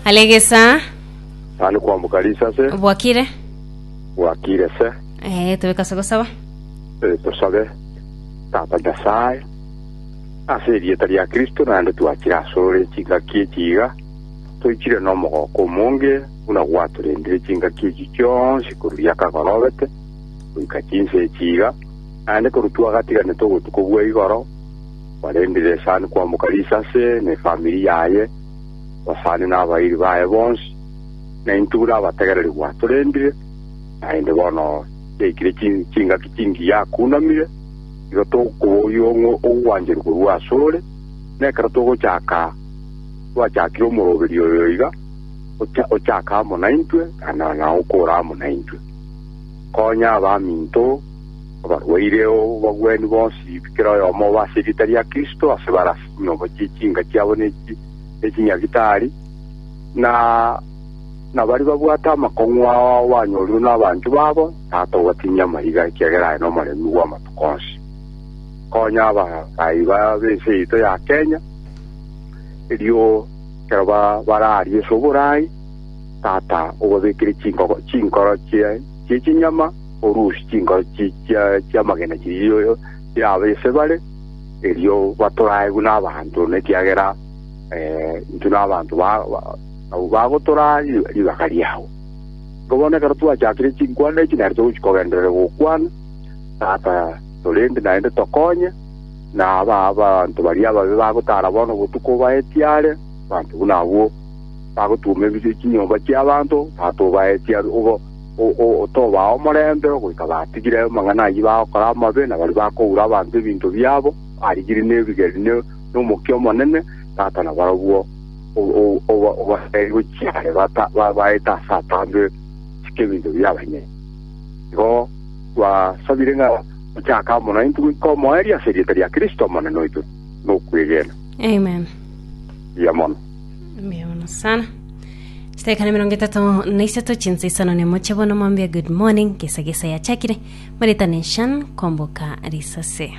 alegesa Tani kwambuka risase bwakire bwakire se eh, tobekase gosaba Eh, tosabe tata nyasaye ase erieta ria kristo naende twachire asore chingaki echiga toichire nomogoko omonge buna gwatorendire chingaki echi chionsi koru riakagorobete goika chinse echiga naende koru twagatiganete ogotuko bwa igoro Barendire esani kwamboka risase na efamiri yaye, basani na abairi baye bonsi, na intwe buna abategereri gwatorendire, naende bono yaikire chi- chingaki chingi yakunamire, igo tokoboyia ong'we obwanchani korwa asore, na ekero togochaka twachakire omoroberi oyo iga, ocha- ochake amo naintwe, na- na- na okore amo naintwe. Konya abaminto, Abarwaire obabwani bonsi kera oyomo obe ase erieta ria Kristo ase barase chinyomo chie chiinka chiabo ne chinyabitari, na baria babwate amakong'u ao banyorwe nabanchwa babo, Tata obatinyie amaiga, ekiagera aye nomoremi bw'amatuko onsi. Konya abarai b'ense yaito ya Kenya, erio ekero bare aria ase oboraai, Tata obabekere chinkoro chie chinyama, orusie chinkoro chi'amagena chiria chirabe ase bare, erio batorae buna abanto, nekiagera intwe nabanto abwo bagotoraa ribaga riao. Igo bono ekero twachakire chinkwana echi nere togochia kogenderera gokwana, Tata, torende naende tokonye, na abanto baria ababe bagotara bono obotuko obae ekiaare, abanto buna abwo bagotuoma chinyomba chi'abanto, Tata obae ekiaare. otobaa omorembe goika batigire amang'ana ayio bagokora amabe, na baria bakoura abanto ebinto biabo, barigirie nebigeri nomokia omonene, tata na barabwo obateebie gochia are baete ase atambe chike ebinto bia abanyene. Igo twasabire ng'a ochake amo naintwe goika omoerio ase erieta ria Kristo Omonene oito nokwegena. Amen. Mbuya mono. Mbeono sana. Chitakana mirongo etato na isato chinsa isano nemo chia bono mwambia good morning gesa gesa yachakire maritane shan komboka risase